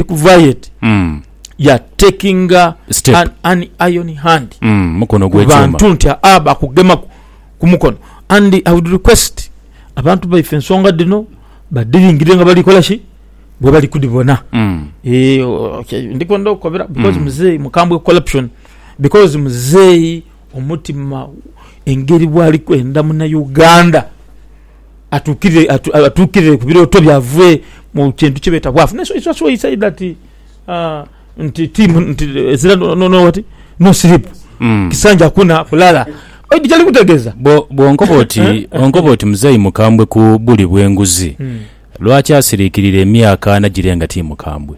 kuvayo eti Mm. ya taking a- Step. an, an iron hand Mm. Mukono ku gw'ekyuma. bantu nti aa bakugema ku- ku mukono and i would request abantu baife ensonga dhino badhiringire nga bali kola ki bwe bali kudhibona Mm. Eh, okay, ndikwenda okukobera because Mm. muzeeyi mukambwe corruption because muzeeyi omutima engeri bwali kwenda muna uganda atuukirire ku birooto byaibwe mu kintu kye beeta bwavu. Naye it's why he said that nti tiimu nti ezira no what? No sleep. Mm. Kisanja hakuna kulala. Oidhi kyali kutegeeza? Bw'onkoba oti, eh, eh, bw'onkoba eh. oti muzeeyi mukambwe ku buli bw'enguzi, hmm. lwaki asiriikirira emyaka ana girenga tiimukambwe?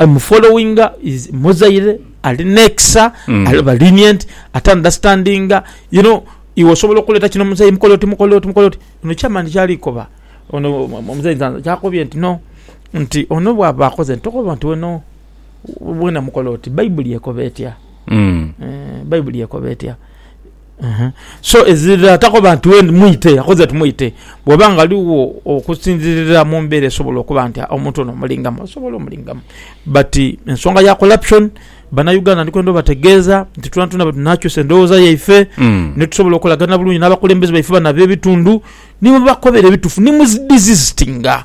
I'm following is Muzaire ali nekisa mm. aliba lenient ate understanding you know iwe osobola okuleta kino muzeyi mukole oti mukole oti mukole oti ono chairman kyalikoba ono omuzeyi nzanza kyakobye nti no nti ono bwaba akoze tokoba nti weno wena mukole oti baibuli ekoba etya mm. eh, baibuli ekoba etya So ezira atakoba nti wendi mwite yakoze ti mwite bwoba nga ligho okusinzirira mu mbera esobola okuba nti omuntu ono omulingamu osobola omulingamu but ensonga ya corruption bana Uganda ndi kwenda obategeeza nti twena twena bwe tunakyusa endhoghoza yaife mm. ni tusobola okolagana bulungi n'abakulembeze baife bano ab'ebitundu ni bwebakobera ebitufu ni muzidizizitinga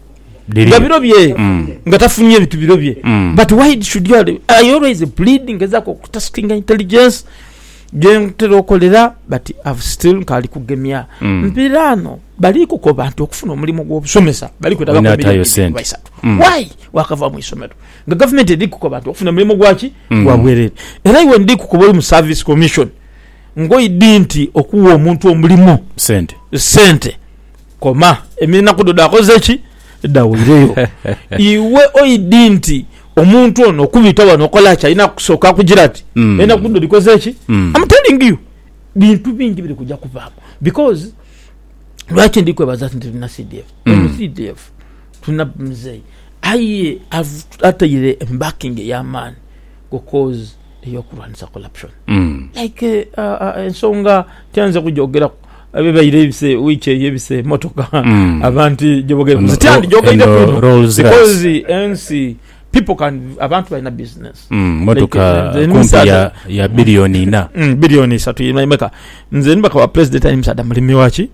Dhiri. nga biro bye Mm. nga tafunye bitu biro bye Mm. but why it should you I always plead ngezaku okutastinga intelligence gyentera okolera but I've still nkali kugemya Mm. mpirano bali kukoba nti okufuna omulimu gwobusomesa bali kwetaga Olina milioni atayo bibiri sente. kuba isatu Mm. why wakava mu isomero nga government eri kukoba nti okufuna omulimu gwaki Mm. gwa bwerere era iwe ndi kukoba oli mu service commission ngoidi nti okuwa omuntu omulimu sente sente Koma, enaku dho dhakoze ki? Dhaweireyo. Iwe oidhi nti omuntu ono okubita wano okola ki? Alina kusooka kugira ati, Mm. enaku dho dhikoze ki? Mm. Am telling you, bintu bingi biri kuja kuvaamu. Because lwaki ndi kwebaza nti tulina CDF? Eno Mm. CDF tulina mzeei aye av- ataire embakingi ey'amaani. go cause eyokulwanisa corruption like ensonga tyanze kujogeraku ebibaire ebise week eyo ebise emotoka abantu jebogere tyandijogereku ino because ensi people can abantu balina business motoka kumpi ya billion ina billion isatu meka nze nibakaba president ali musaadha mulimi waki